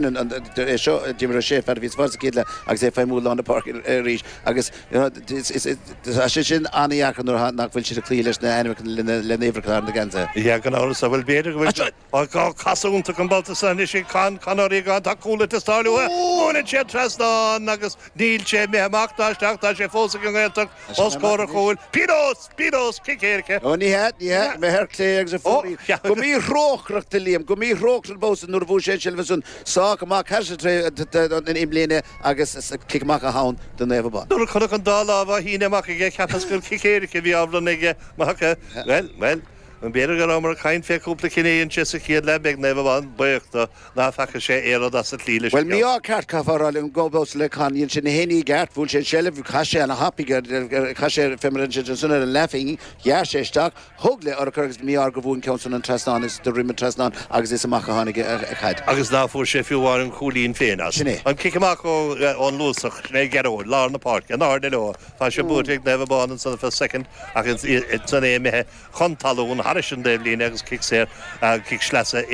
Tar éis seo, uimhir a sé fear a bhí sa bhád sa chéad leath agus é ag feidhmiú lár na páirce arís agus tá sé sin an-deacair nuair nach bhfuil siad ag cloí leis na hainmneacha lena n-uimhreacha ar na geansaithe. Níl aon amhras ach go bhfuil b'fhéidir go bhfuil gá casadh iontu an babhta san anois ag Con Connery gan tá cúl ag teastáil uathu, buaileann sé an trasnán agus níl sé imithe amach ná isteach tá sé fós ag an nGaeltacht. Os comhair an chúil, pionós! Pionós! Cic éirice! Ó, ní hea, ní hea, mé ar clé agus a phócaí. Go míthrócaireach do Liam, go míthrócaireach an babhta san nuair a fuair sé an tseilbh ansan. Sách maith, caithfidh sé troid na imlíne agus cic amach atá ann do Naomh Abán. Nuair a chonac an dá lámh á shíneadh amach aige, cheapas gur cic éirice a bhí á bhronnadh aige. Mhac, Bhuel, bhuel, b'fhéidir go rabhamar ag caint fé chúpla cinneadh inti sa chéad leath, beidh Naomh Abán buíoch do. Ná feaca sé aon rud as an slí leis an gceann. Bhuel, mí-ádh ceart, caithfeá a rá liom. Go bhfios le Con, dhein sé gach aon ní i gceart, bhuaigh sé an tseilbh, chas sé ana-thapaidh air, chas sé ar, fé mar ansin, ansan ar an leathphingin, ghearr sé isteach, thug le urchar agus ba mí-ádh gur bhuail an ceann san an trasnán is de dhroim an trasnán agus is amach a tháinig an chaid. Agus ná fuair sé fiú amháin an cúilín féin as. Sin é. An cic amach ó, ón Luasach, sin é Gearóid, lár na páirce, in airde leo, tá sé buailte ag Naomh Abán ansan ar feadh soicind ach is, is, san é imithe. chun talún thairis an dtaobhlíne agus cic saor agus cic sleasa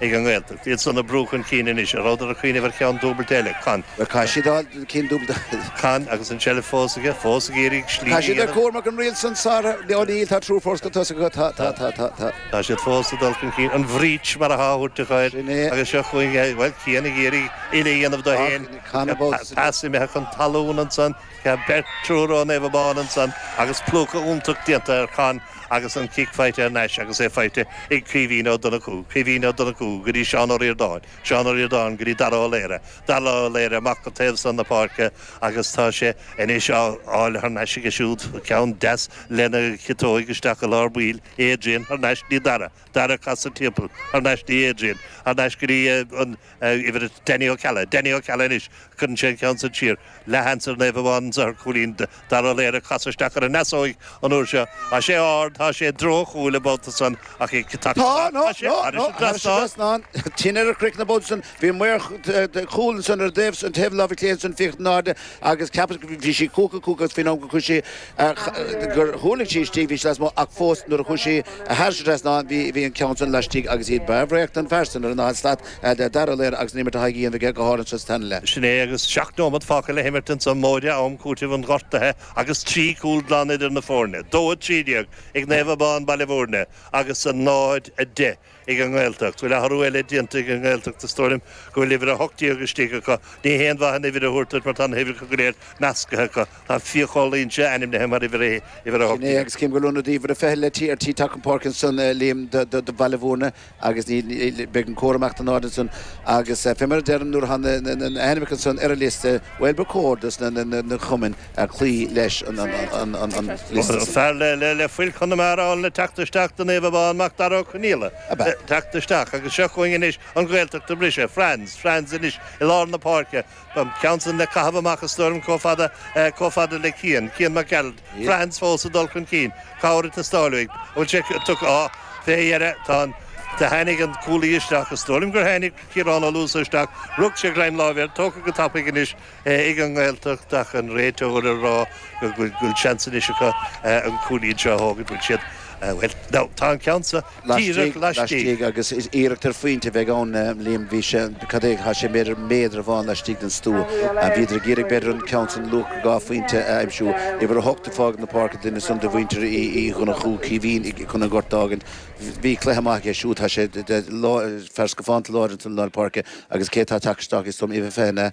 ag an nGaeltacht. Iadsan ag brú chun cinn anois, an rabhadar ag cuimhneamh ar cheann dúbailte eile, Con. Tá siad á, cinn dúbailte. Con, agus an tseilbh fós aige, fós ag iarraidh slí a dhéanamh. Tá siad ar cuairt mar go an riail san sáraithe, Leo, níl, tá triúr fós chun tosaigh acu, tá, tá, tá, tá, tá. Tá siad fós ag dul chun cinn, an breach mar atá á thabhairt acu air, Sin é. agus seo chugainn é, bhuel, Cian ag iarraidh slí a dhéanamh dó féin, Ach, Con, a bpósadh. pas imithe chun talún ansan. Ceann beirt triúr ó Naomh Abán ansan agus plúcadh iontach déanta ar Chon agus an cic faighte thar n-ais agus é faighte ag Caoimhín Ó Donnchú, Caoimhín Ó Donnchú go dtí Seán Ó Ríordáin, Seán Ó Ríordáin go dtí Dara Ó Laoire, Dara Ó Laoire amach go taobh san na páirce agus tá sé anois á fháil thar n-ais aige siúd, ceann deas lena chiotóig isteach i lár baill, Adrian thar n-ais go dtí Dara, Dara ag casadh timpeall, thar n-ais go dtí Adrian, thar n-ais go dtí an. uimhir a Danny Ó Ceallaigh, Danny Ó Ceallaigh anois, cuireann sé an ceann san siar, leathsheans ag Naomh Abán anso ar chúilín Dara Ó Laoire ag casadh isteach ar an ndeasóig an uair seo, tá sé ard, tá sé i dtreo an chúil an babhta san ach ag tacú Tá, amach, no, thá sé, no, thairis no, an thairis an trasnán. trasnán, tinn ar a chrích na babhta san, bhí maor cúil ansan ar an dtaobh san, taobh láimhe chlé ansan, ag féachaint in airde agus ceapas go, bhí sí cúca, cúca agus faoin am gur chuaigh sí, gur thuirling sí istigh, bhí sí lasmuigh ach fós nuair a chuaidh sí thairis an trasnán bhí an ceann san laistigh agus iarracht bhreá don fhear san ar an daichead slat Dara Ó Laoire agus an-imirt á dhéanamh aige go háirithe anseo sa tarna leath. Sin é agus seacht nóimead fágtha le himirt anso móide am cúitimh an ghortaithe agus trí cúl glan idir na foirne, dó a trí déag ag Naomh Abán, Baile Mhúirne, agus a náid a deich ag an nGaeltacht. Bhfuil athrú eile déanta ag an nGaeltacht is dóigh liom go bhfuil uimhir ocht déag istigh acu? Ní haon mhaith an uimhir a thabhairt duit mar tá na huimhreacha go léir meascaithe acu. Tá Fiachán Luínse ainmnithe mar uimhir a haon, uimhir a Sin é agus cím go raibh ionadaí uimhir a fiche le teacht ar an bpáirc ansan Liam do do Bhaile Mhúirne agus níl níl beidh an córam amach as an áit ansan agus fé mar a deirim nuair atá na na na na hainmneacha ansan ar an liosta bhuel ba chóir dos na na na na cumainn ag cloí leis an liosta sin. Fear le fuil Chonamara ann le teacht isteach do Naomh Abán mac Dara Ó Conaola le teacht isteach agus seo chugainn anois an Ghaeltacht ag briseadh. Franz Franz anois i lár na páirce, an ceann san le caitheamh amach is dóigh liom chomh fada chomh fada le Cian, Cian Mac Gearailt. Franz fós ag dul chun cinn. Cabhair ag teastáil uaidh. An bhfuil sé tugtha? Á, fé dheireadh tá an Do tháinig an cúlaí isteach is dóigh liom gur tháinig Ciarán Ó Luasa isteach, rug sé greim láimhe air, tógtha go tapaidh anois, ag an nGaeltacht tá an réiteoir á rá go bhfuil seans anois acu an cúilín seo a thógaint, bhuel, siad, bhuel, now, tá an ceann seo díreach laistigh. laistigh agus is iarracht ar phointe a bheidh ann, Liam, bhí sé, cad é, chaith sé méadar, méadar amháin laistigh den stua. Bhíodar ag iarraidh, b'fhéidir, an ceann sin luach dhá phointe a aimsiú. Uimhir a hocht ag fágáil na páirce, duine san de mhuintir Uí Dhonnchú, Caoimhín, chun an gort a fhágaint. Bhí cluiche maith aige siúd, tá sé, fear scafánta láidir i lár páirce agus cé atá ag teacht isteach, is dóigh liom, uimhir a fiche, an ea?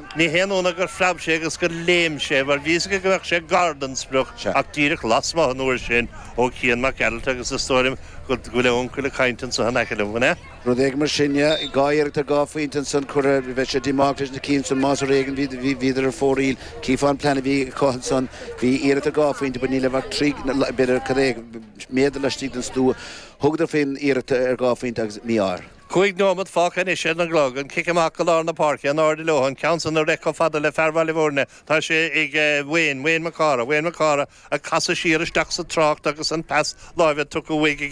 Ní haon ionadh gur phreab sé agus gur léim sé, mar bhí's aige go mbeadh sé gar don sprioc, ach díreach lasmuigh an uair sin ó Chian Mac Gearailt agus is dóigh liom go bhfuil a uncail ag caint anso in aice liom, an ea? Rud éigin mar sin, yeah. Dhá iarracht ar dhá phointe ansan curtha, beidh sé díomách leis na cinn san más ar éigin bhíodar ar fóraoil. Chífeá an plean a bhí acu ansan, bhí iarracht ar dhá phointe but ní raibh ach trí, b'fhéidir cad é, méadar laistigh den stua. Thugadar faoin iarracht ar dhá phointe agus mí-ádh air. Cúig nóimead fágtha anois ar an gclog. An cic amach go lár na páirce, in airde leo, an ceann san á réiteach chomh fada le fear Bhaile Bhuirne, tá sé ag Wayne, Wayne Mac Cárthaigh, Wayne Mac Cárthaigh, ag casadh siar isteach sa trácht agus an pas láimhe tugtha uaidh aige go